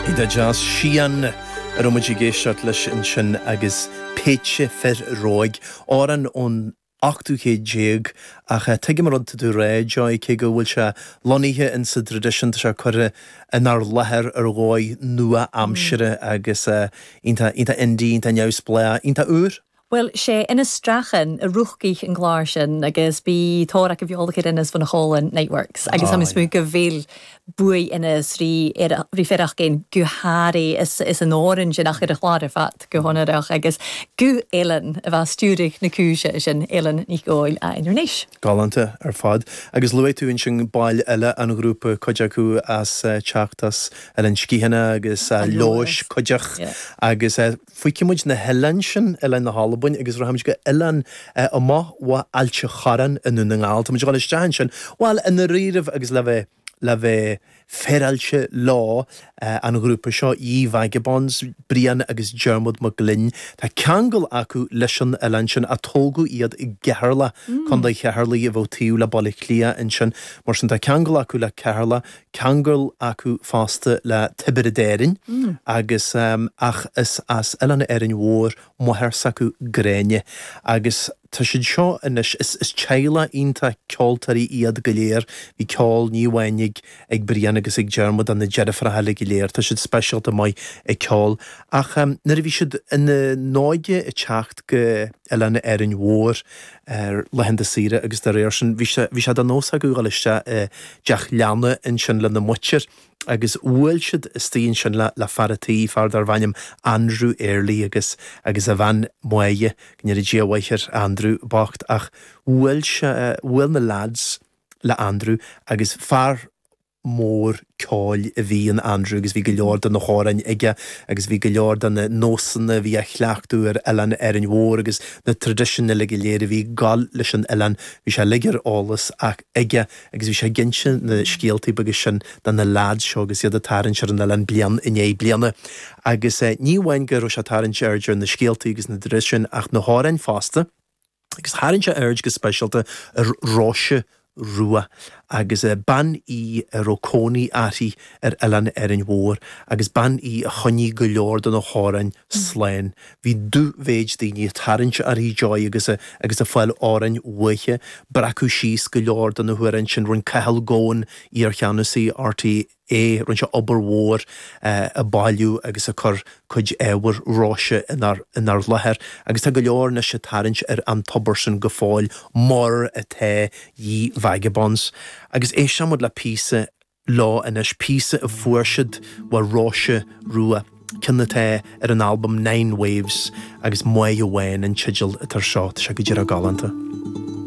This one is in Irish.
Iontach deas, Sian a raibh muid ag éisteacht leis ansin agus Péitse Fir Róig, amhrán ón ochtú céad déag ach tuigim an rud atá tú a rá Joy, cé go bhfuil sé lonnaithe in sa dtraidisiún tá sé curtha inár láthair ar dhóigh nua-aimsire agus iontach indie, iontach neamhspleách, iontach úr. Bhuail sé Inis Strachan, Rúscaigh an gclár sin agus bhí tóir acu bheith olc ar Inis bhun Cholann, Niteworks, agus táim ag smúid go bhfuil buaidh Inis rí ar rí Fearachgin go hairí is an fhoireann sin ach ar an chlár ar fad go honnrach agus guth Ellen a bheith stiúraigh na cúise sin, Ellen Nic Gheoil a ainm anois. Galánta ar fad. Agus luaigh tú ansin baill eile an ghrúpa, cuid acu as teacht as Oileán Sciathana agus Leodhais, cuid each agus. Fágfaidh muid na hoileáin sin, oileáin na hAlbain, agus rachaimid go oileán amach ó Ailt an Chorráin i nDún na nGall. Táimid ag dul isteach ansin, bhuel, i ndáiríribh agus le bheith, le bheith féaráilte leo, an ghrúpa seo, Ye Vagabonds, Brian agus Diarmuid Mac Gloinn, tá ceangal acu leis an oileán sin, ach tógadh iad i gCeatharlach, Contae Cheatharlaigh a bheadh taobh le Baile Átha Cliath ansin, mar sin tá ceangal acu le Ceatharlach, ceangal acu fosta le Tiobraid Árann agus, ach is as Oileán Árainn Mhór máthair s'acu, Gráinne, agus tá siad seo anois, is teaghlach iontach ceoltóirí iad go léir, bhí ceol, ní amháin ag Brian agus ag Diarmuid ach na deirfiúracha eile go léir, tá siad speisialta maith ag ceol. Ach nuair a bhí siad ina n-óige ag teacht go. Oileán Árainn Mhór ar laethanta saoire agus dá réir sin bhí sé de nós acu dul isteach i dteach leanna ansin lena muintir agus bhuail siad istigh ansin le fear a' tí, fear darbh ainm Andrew Early agus agus a bhean Maude, go ndéanaidh Dia a mhaith ar Andrew bocht ach bhuail sé, bhuail na leaids le Andrew agus fear. mór ceoil a bhí in Andrew agus bhí go leor de na hamhráin aige agus bhí go leor de na nósanna a bhí á chleachtadh ar oileán Árainn Mhór agus na traidisiúin uile go léir a bhí ag gabháil leis an oileán, bhí sé uilig ar eolas aige agus bhí sé ag inse na scéaltaí beaga sin do na leaids seo agus iad ag tarraingt ar an oileán bliain i ndiaidh bliana. Agus ní amháin go raibh sé ag tarraingt aird ar na scéaltaí agus na traidisiúin ach na hamhráin fosta. agus tharraing sé aird go speisialta ar Róise Rua agus bean í a raibh cónaí uirthi ar Oileán Árainn Mhór agus bean í a choinnigh go leor de na hamhráin slán. Bhí dú-mhéid daoine ag tarraingt uirthi, Joy agus ag fáil amhráin uaithi, breacadh síos go leor de na hamhráin sin, rinne Cathal Goan, iarcheannasaí RTÉ, é, rinne sé obair mhór ag bailiú agus ag cur cuid ábhar Róise inár láthair agus tá go leor anois ag tarraingt ar an tobar sin go fóill mar atá Ye Vagabonds agus éistfidh muid le píosa leo anois, píosa a fuair siad ó Róise Rua, ceann atá ar an albam Nine Waves agus Máire Bhán an teideal atá air seo, tá sé go díreach galánta.